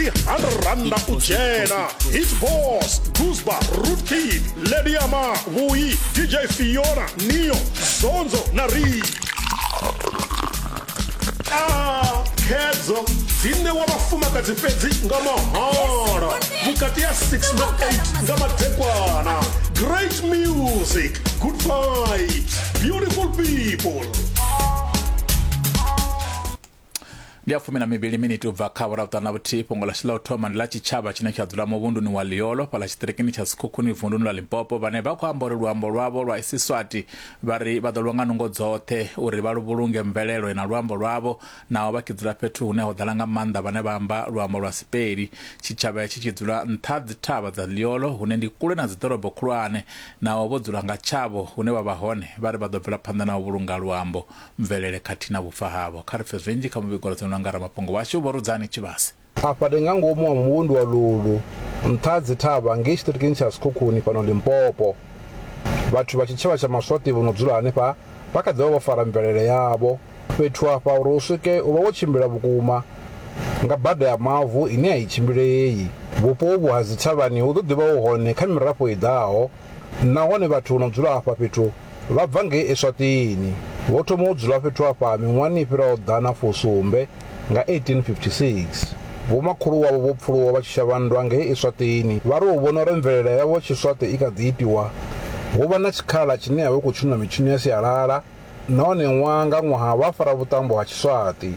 tihanranda u dzhena hit boss gusba rootkid lediama vhuyi dj fiona neo zonzo na ri Ah, khedzo dzi ṋewa vhafumakadzi fhedzi nga mahala vhukati ya 6 na 8 nga madekwana great music good vibes beautiful people ndi ya fumi na mivhili miniti u bva kha vhura vhuṱanu na vhuthihi fhungo ḽashu ḽa u thoma ndi ḽa tshitshavha tshine tsha dzula muvhunduni wa liolo fhaḽa tshiṱirikini tsha sikhukhuni vunduni ḽa limpopo vhane vha khou amba uri luambo lwavho lwa isiswati vha ri vha ḓo lwa nga nungo dzoṱhe uri vha lu vhulunge mvelelo na luambo lwavho naho vha tshi dzula fhethu hune ho ḓala nga maanḓa vhane vha amba luambo lwa sipeli tshitshavha hetshi tshi dzula nṱha dzithavha dza liolo hune ndi kule na dziḓorobo khulwane naho vho dzula nga tshavho hune vha vha hone vha ri vha ḓo bvela phanḓa na u vhulunga luambo mvelele khathihi na vhufa havho. Kha ri pfe zwinzhi kha muvhigo ro ḓiṋwa nga ramafhungo washu Vho Rudzani Tshivhase. Afha ndi nga ngomu ha muvhundu wa Lulu, nṱha ha dzithavha ngei tshiṱirikini tsha Sekhukhuni fhano Limpopo. Vhathu vha tshitshavha tsha Maswati vho no dzula hanefha vha kha ḓi vha vho fara mvelele yavho. Fhethu afha uri u swike u vha wo tshimbila vhukuma nga bada ya mavu ine a i tshimbilei. Vhupo uvhu ha dzithavhani hu ḓo ḓi vha hu hone kha mirafho i ḓaho. Nahone vhathu vho no dzula afha fhethu vha bva ngei Eswatini. Vho thoma u dzula fhethu afha miṅwahani i fhiraho ḓana fusumbe nga 1856. Vhomakhulu wavho vho pfuluwa vha tshi shavha nndwa ngei Eswatini. Vha ri u vhona uri mvelele yavho ya Tshiswati i kha ḓi itiwa, vho vha na tshikhala tshine ya vha i khou tshinwa mitshino ya sialala nahone ṅwaha nga ṅwaha vha fara vhuṱambo ha Tshiswati.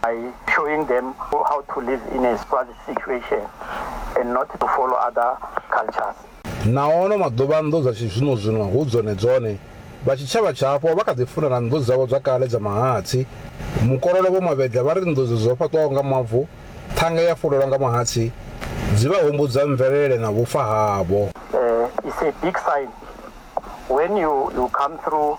by showing them how to live in a Swazi situation and not to follow other cultures. Na ono maḓuvha nnḓu dza tshizwino-zwino hu dzone dzone. Vha tshitshavha tshapo vha kha ḓi funana nnḓu dzavho dza kale dza mahatsi. Mukololo Vho Mavhedza vha ri nnḓu dzo dzo fhaṱwaho nga mavu, ṱhanga ya fulelwa nga mahatsi, dzi vha humbudza mvelele na vhufa havho. Uh, it's a big sign when you, you come through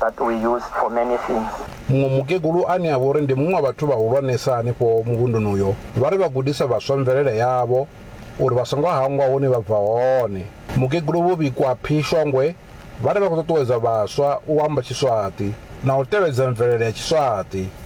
that we used for many things. Muṅwe mukegulu ane a vha uri ndi muṅwe wa vhathu vhahulwanesa hanefho muvhunduni uyo vha ri vha gudisa vhaswa mvelele yavho uri vha songo hangwa hune vha bva hone. Mukegulu Vho Bikwaphi Shongwe vha ri vha khou ṱuṱuwedza vhaswa u amba Tshiswaṱi na u tevhedza mvelele ya Tshiswaṱi.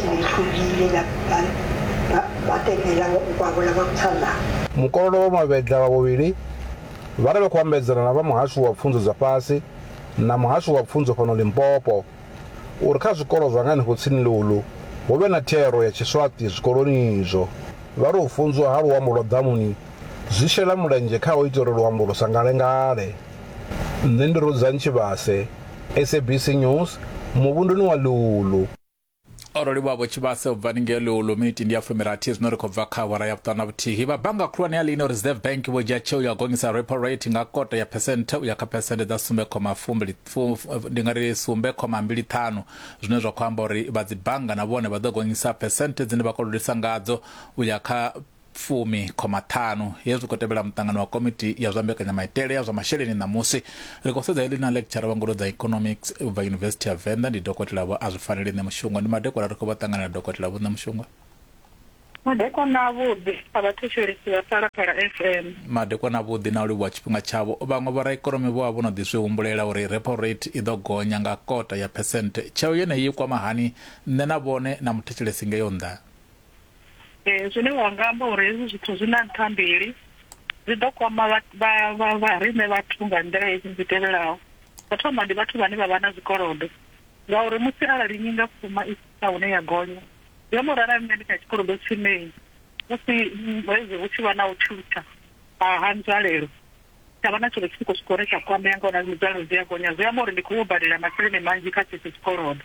Nithulile na batenela ngwavho la vhakutsanda. Mukololo wa Mavhedla vha vhuvhili vha ri vha khou ambedzana na vha Muhasho wa Pfunzo dza Fhasi na Muhasho wa Pfunzo fhano Limpopo uri kha zwikolo zwa nga henefho tsini ḽihulu hu vhe na thero ya Tshiswaṱi zwikoloni izwo. Vha ri u funzwa ha luambo lwa ḓamuni zwi shela mulenzhe kha u ita uri luambo lu sa ngalengale. Nṋe ndi Rudzani Tshivhase, SABC News, muvhunduni wa Ḽihulu. o roliwa vho tshivhase u bva ningei luulu miniti ndi ya fumirathi zwino ri khou bva kha awara ya vhuṱanu na vhuthihi vha bannga khulwane ya lino reserve bank vho dzhia tsheo ya u gonyisa repo rate nga kota ya phesenthe u ya kha phesenthe dza sumbe khoma fumbili ndi nga ri sumbe khoma mbili ṱhanu zwine zwa khou amba uri vha dzi bannga na vhone vha ḓo gonyisa phesenthe dzine vha kolodisa ngadzo u ya kha fumi khoma ṱhanu hezwi zwi khou tevhela muṱangano wa komiti ya zwa mbekanyamaitele ya zwa masheleni ṋamusi ri khou sedza heḽi na lecture vha ngudo dza economics u bva yunivesithi ya venḓa ndi dokotela vho a zwi faneli nṋe mushonga ndi madekola ri khou vha ṱanganela dokotela vho nṋe mushonga madekwana avhuḓi a vhathetshelesi vha phalaphala fm madekwana avhuḓi na u livhuwa tshifhinga tshavho vhaṅwe vhoraikonomi vho vha vho no ḓi zwi humbulela uri repo rate i ḓo gonya nga kota ya phesente tsheo yeneyi i kwama hani nṋe na vhone na muthetshelesi ngeyo nnḓa Ee, zwine wa nga amba uri hezwi zwithu zwi na nṱha mbili, zwi ḓo kwama vha vha vha vha riṋe vhathu nga nḓila hedzi dzi tevhelaho. Tsho thoma ndi vhathu vhane vha vha na zwikolodo, ngauri musi arali nyingafhuma i tshi swika hune ya gonya, zwi amba uri arali nṋe ndi kha tshikolodo tshinei musi hezwi hu tshi vha na u tshintsha ha ha nzwalelo, tsha vha na tshiṅwe tshi tshi khou swika hune tsha kwamea ngauri na nzwalelo dzi a gonya, zwi amba uri ndi khou yo badela masheleni manzhi kha tshetsho tshikolodo.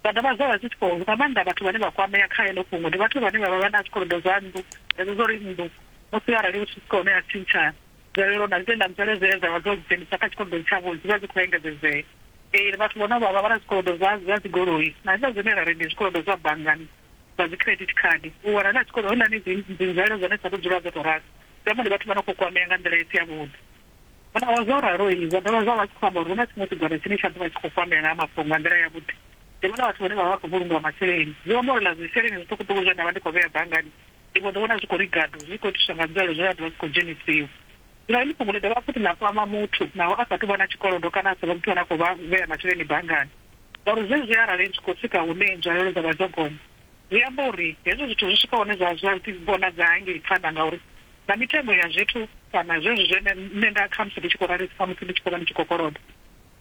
Vha dovha zwa vha zwi tshi khou nga maanḓa vhathu vhane vha kwamea kha heḽo fhungo ndi vhathu vhane vha vha vha na zwikolodo zwa nnḓu hedzo zwo ri nnḓu musi arali hu tshi swika hune ya tshintsha nzwalelo na zwitenda nzwalelo dzine dza vha dzo dzhenisa kha tshikolodoni tshavho dzi vha dzi khou engedzedzea. Ee, vhathu vho no vha vha vha na zwikolodo zwa zwa dzigoloi na hezwiḽa zwine ra ri ndi zwikolodo zwa banngani zwa dzi credit card u wana na tshikolodo houḽani dzi dzi nzwalelo dza hone dzi sa tou dzula dzo tou ralo zwi amba ndi vhathu vha no khou kwamea nga nḓila i si ya vhuḓi. Vho naho zwo ralo, zwa dovha zwa vha tshi khou amba uri hu na tshiṅwe tshigwada tshine tsha ḓo vha tshi khou fambela na ha mafhungo nga nḓila yavhuḓi. Ndi vhona vhathu vhane vha vha vha khou vhulungiwa masheleni. Zwi amba uri na zwisheleni zwiṱukuṱuku zwe nda vha ndi khou vhea banngani, ndi mbo ḓi vhona zwi khou ri gadu, zwi tshi khou itiswa nga nzwalelo dze dza ḓo vha dzi khou dzhenisiwa. Zwino heḽi fhungo ḽi dovha futhi ḽa kwama muthu naho a sa athu vha na tshikolodo kana a sa vhe muthu ane a khou vhea masheleni banngani, ngauri zwezwi arali zwi khou swika hune nzwalelo dza vha dzo gonya, Zwi amba uri hezwi zwithu zwi swika hune zwa zwa si vhonadze hangei phanḓa ngauri na mitengo ya zwithu kana zwezwi zwine nṋe nda khamusi ndi tshi khou rali khamusi ndi tshi khou vha ndi tshi khou koloda,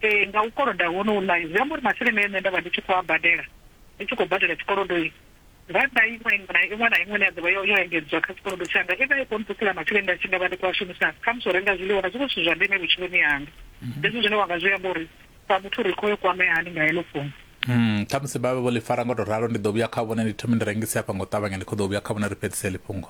ee, nga u koloda honohu na zwi amba uri masheleni e nṋe nda vha ndi tshi khou a badela ndi tshi khou badela tshikolodo itshi, rannda iṅwe iṅwe na iṅwe na iṅwe ine ya ḓo vha yo yo engedzwa kha tshikolodo tshanga i vha i khou nṱusela masheleni nda tshi nga vha ndi khou a shumisa khamusi u renga zwiḽiwa na zwiṅwe zwithu zwa ndeme vhutshiloni hanga. Hezwi zwine wa nga zwi amba uri sa muthu ri khou i kwamea hani nga heḽo fhungo Mm, khamusi vha vhe vho ḽi fara ngo to ralo ndi ḓo vhuya kha vhone ndi thome ndi rengise hafha ngo ṱavhanya ndi khou ḓo vhuya kha vhone ri fhedzise ḽi fhungo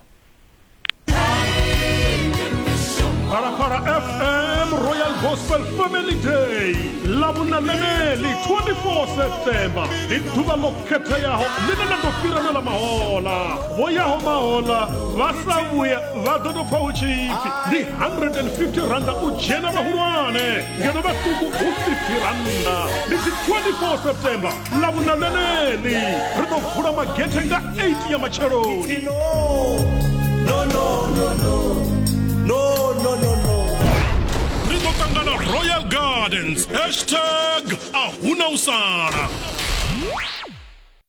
Phalaphala FM Royal Gospel Family Day ḽa vhunamemeli 24 September ndi ḓuvha ḽo khetheaho ḽine ḽa ḓo fhirelwa mahola vho yaho mahola vha sa vhuya vha ḓo tou pfa hu tshipfi ndi 150 randa u dzhena vhahulwane ngeno vhaṱuku hu si ḓirannda ndi si 24 september ḽa vhuna ḽeneḽi ri ḓo vula magethe nga 8 ya matsheloni ri ḓo ṱangana royal gardens hashtag a huna u sala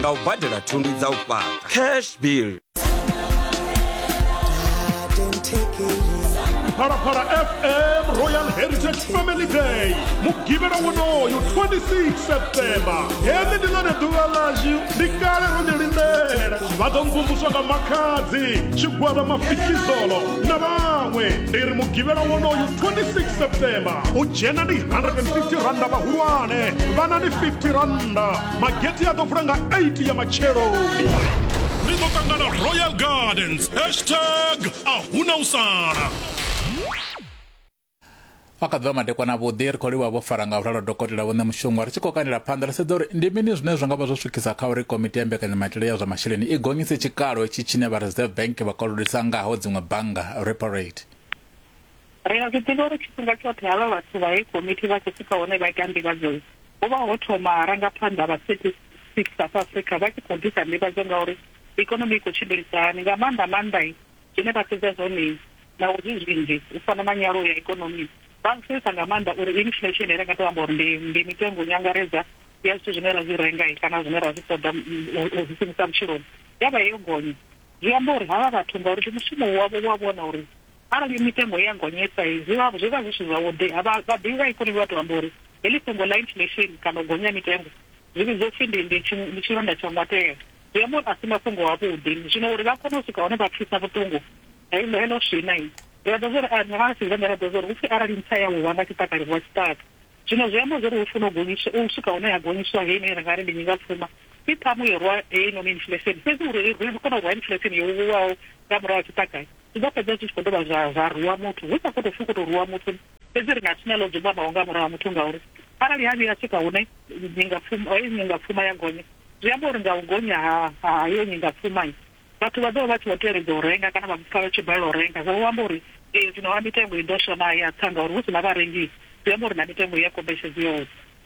nga u badela thundu dza u fhaṱa cash bill phalaphala fm royal heritage family day mugivhela wonoyo 26 septemba heḽi ndi ḽone ḓuvha ḽashu ndi kale ro ḽi lindela vha ḓo mvumvuswa nga makhadzi tshigwada mafikizolo na vhaṅwe ndi ri mugivhela wonoyo 26 septemba u dzhena ndi 150 randa vhahulwane vhana ndi 50 randa mageti a ḓo vula nga 8 ya matshelo ri ḓo ṱangana royal gardens hashtag a huna u sala vha kha ḓuvha madekwana vhuḓi ri khou livha vho fara nga vhulalo dokotela vhone mushonga ri tshi khou kandela phanḓa ri sedza uri ndi mini zwine zwa nga vha zwo swikisa kha uri komiti ya mbekanyamaitele ya zwa masheleni i gonyise tshikalo tshi tshine vha reserve bank vha kolodisa ngaho dziṅwe bannga repo rate Ri a zwi ḓivha uri tshifhinga tshoṱhe havha vhathu vha heyi komithi vha tshi swika hune vha ita nḓivhadzo, ho vha ho thoma rangaphanḓa vha Statistics South Africa vha tshi khou ḓisa nḓivhadzo nga uri ikonomi i khou tshimbilisa hani, nga maanḓa maanḓa zwine vha sedza zwone naho zwi zwinzhi u fana na nyaluwo ya ikonomi, vha zwi sedzesa nga maanḓa uri inflation ri nga tou amba uri ndi ndi mitengo nyangaredzwa ya zwithu zwine ra zwi renga kana zwine ra zwi ṱoḓa u zwi shumisa vhutshiloni ya vha yo gonya. Zwi amba uri havha vhathu ngauri ndi mushumo wavho wa vhona uri Arali mitengo ya gonyesa zwi vha zwi vha zwi si zwavhuḓi. Vha vhaḓivhi vha ikonomi vha tou amba uri heḽi fhungo ḽa inflation kana u gonya ha mitengo zwi vhidzwa u pfi ndi ndi ndi tshilonda tsha ngwatea. Zwi amba uri a si mafhungo avhuḓi. Zwino uri vha kone u swika hune vha pfisa vhuṱungu heḽo heḽo swina, ri a ḓivha zwa uri a nga si gonya ra ḓivha zwa uri hu pfi arali ntsa ya wa nga tshiṱaka livhuwa tshiṱaka. Zwino zwi amba zwa uri hu funa u gonyiswa u swika hune ha gonyiswa heyi ine ra nga ri ndi nyingapfuma i ṱhamu yo rwa heinoni inflation. Fhedzi uri ri kone u rwa inflation yo vhulwaho nga murahu ha tshiṱaka, Zwi ḓo fhedza zwi tshi khou dovha zwa zwa rwiwa muthu, hu sa khou tou pfi u khou tou rwiwa muthu. Fhedzi ri nga si na ḽa u dzumbamaho nga murahu ha muthu ngauri arali ha vhuya ha swika hune nyingapfuma heyi nyingapfuma ya gonya, zwi amba uri nga u gonya ha ha heyo nyingapfuma vhathu vha ḓo vha vha tshi vho teledza u renga kana vha pfa vha tshi balelwa u renga. Zwa vho amba uri ee zwino ha mitengo i ḓo swa naa? Ya tsa ngauri hu si na vharengi zwi amba uri na mitengo i ya kombetshedza i ya u tsa.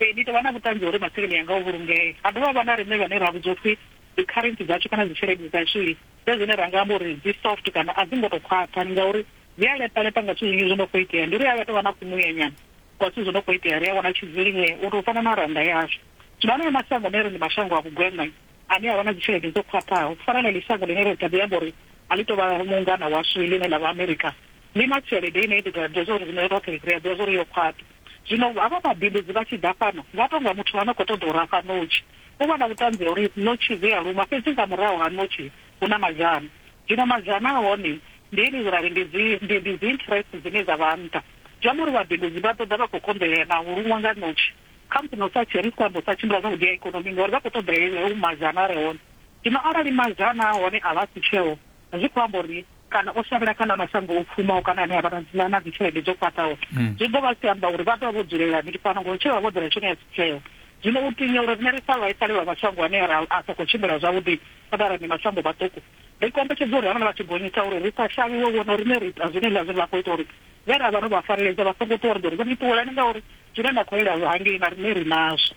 Ee, ni tou vha na vhuṱanzi ha uri masheleni anga o vhulungea. Ha dovha ha vha na riṋe vhane ra vhudzwa u pfi dzikharentsi dzashu kana dzitshelede dzashu ndi zwine ra nga amba uri dzi soft kana a dzi ngo tou khwaṱha ndi ngauri dzi a lepa-lepa nga zwithu zwinzhi zwo no khou itea. Ndi uri ha vha tou vha na kumuyanyana kwa zwithu zwo no khou itea, ri a wana tshidzilimee u tou fana na rannda yashu. Zwino haneyo mashango ane ri ndi mashango a vhugwena ane a vha na dzitshelede dzo khwaṱhaho, u fana na heḽi shango ḽine ri kha ḓi amba uri a ḽi tou vha mungana washu ḽine ḽa vha Amerika, ḽi na tshelede ine i ḓo tou vha ḓivhadza uri riṋe roṱhe ri a ḓivha zwa uri yo khwaṱha. Zwino havha vhabindudzi vha tshi ḓa fhano, vha tou nga muthu a no khou ṱoḓa u rafha ṋotshi. U vha na vhuṱanzi ha uri ṋotshi dzi a luma, fhedzi nga murahu ha ṋotshi hu na mazhana. Zwino mazhana a hone ndi ene zwi ra ri ndi dzi, ndi, ndi dzi interest dzine dza vha nṱha. Zwi amba uri vhabindudzi vha ḓo ḓa vha khou konḓelea na u luṅwa nga ṋotshi. Khamusi na u sa, ri si khou amba u sa tshimbila zwavhuḓi ha ikonomi, ngauri vha khou ṱoḓa heyo mazhana a re hone. Zwino arali mazhana a hone a vha a si tsheeho, zwi khou amba uri kana o shavhela kha ḽa mashango o pfumaho kana ane a vha na dzina na dzitshelede dzo khwaṱhaho hmm. zwi ḓo vha si amba uri vha ḓo vha vho dzulela mini fhano ngori tsheo vha vho ḓela tshone ya sitheo zwino u tinya uri rine ri sa vhaisale vha mashango ane ra a sa khou tshimbila zwavhuḓi kana ra ndi mashango maṱuku ri kombetshedza uri havhala vha tshi gonyisa uri ri sa shavhiwe vhona uri ne ri ita zwine ḽa zwine vha khou ita uri vhe ra vha ro vha fareledza vha songo ṱuwa ri ḓo ri vho ni ṱuwelani ngauri zwine na khou ela hangei na rine ri nazwo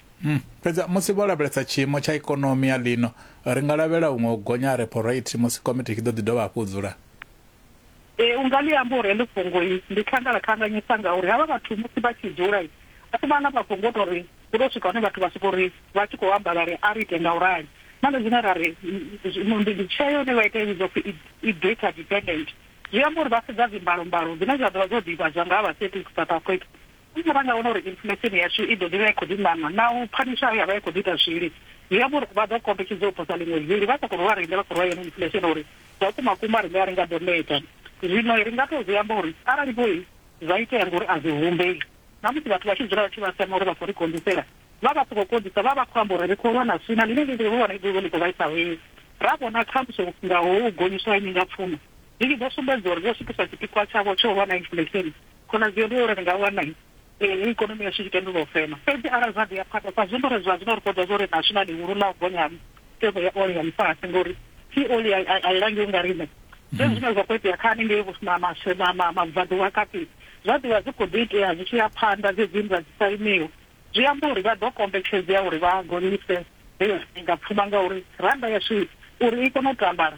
Fhedzi musi vho lavhelesa tshiimo tsha ikonomi ya ḽino, ri nga lavhelela huṅwe u gonya ha repo rate musi komiti i tshi ḓo ḓi dovha hafhu u dzula. Ee, u nga ḽi amba uri heḽi fhungo ndi khangalakhanganyisa ngauri havha vhathu musi vha tshi dzula a si vhaḽa vha fhungo tou ri hu tou swika hune vhathu vha sokou ri vha tshi khou amba vha ri a ri ite nga u rali. Na nṋe zwine ra ri zwino ndi tsheo ine vha ita i vhidzwa u pfi i data dependent, zwi amba uri vha sedza dzimbalombalo dzine dza ḓo vha dzo ḓivhadzwa nga ha vha Celtic South Africa Arali ra nga wana uri inflesheni yashu i ḓo ḓi vha i khou ḓi ṋaṋa na u pfa mishau ya vha i khou ḓi ita zwili, zwi amba uri vha ḓo kombetshedzea u posa ḽiṅwe vili vha sa khou ri vha riṋe vha khou rwa yeneyi inflesheni uri zwa kumakuma riṋe a ri nga ḓo neta. Zwino ri nga tou zwi amba uri arali vho zwa itea ngori a zwi humbei, na musi vhathu vha tshi dzula vha tshi vha sema uri vha khou ri konḓisela, vha vha sokou konḓisa vha vha khou amba uri ri khou lwa na swina ḽine ḽi ḓo vha ḽi khou vhaisa vhei ra vhona khamusi nga ho u gonyiswa ha nyingapfumo Zwi tshi ḓo sumbedza uri vho swikisa tshipikwa tshavho tsha u vha na inflesheni, khonadzeo ndi ya uri ri nga wana ikonomi yashu i tshi tendulwa u fema. Fhedzi arali zwa ḓi ya phanḓa, sa zwino ri zwazwino ri khou ḓivha zwa uri ri ashu na ḽihulu ḽa u gonya ha mitengo ya ole ya ḽifhasi ngauri thi ole a i langiwi nga riṋe. Zwenezwi zwine zwa khou itea kha haningei mabvaḓuvha kati zwa ḓi vha zwi khou ḓi itea zwi tshi ya phanḓa dzedzi nndwa dzi sa imiho, zwi amba uri vha ḓo kombetshedzea uri vha gonyise heyo pfuma ngauri rannda yashu uri i kone u tambala,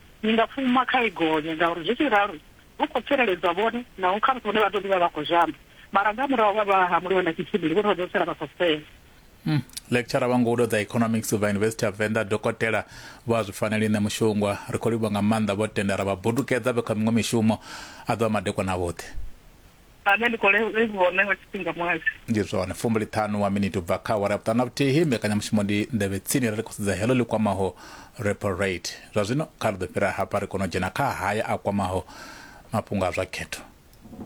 Ni nga fhuma kha i gonya, ngauri zwi tshi ralo hu khou tsireledzwa vhone, naho khamusi vhone vha ḓo ḓi vha vha khou zhamba, mara nga murahu vha vha hamuliwa na tshitshili, vhone vha ḓo sala vha khou fela. Lecturer wa ngudo dza Economics vha Yunivesithi ya Venḓa, Dokotela Vho Azwifaneli Ṋemushungwa, Ri khou livhuwa nga maanḓa vho tenda ra vha budukedza vhe kha miṅwe mishumo. A ḓo vha madekwana avhuḓi. Amen ndi khou le- livhuwa ṋe nga tshifhinga muhasho. ndi zwone fumbiliṱhanu wa miniti u bva kha awara ya vhuṱanu na vhuthihi mbekanyamushumo ndi nḓevhe tsini ri khou sedza heḽo ḽi kwamaho repo rate zwa zwino kha ri ḓo fhira hafha ri kone u dzhena kha haya a kwamaho mafhungo a zwa khetho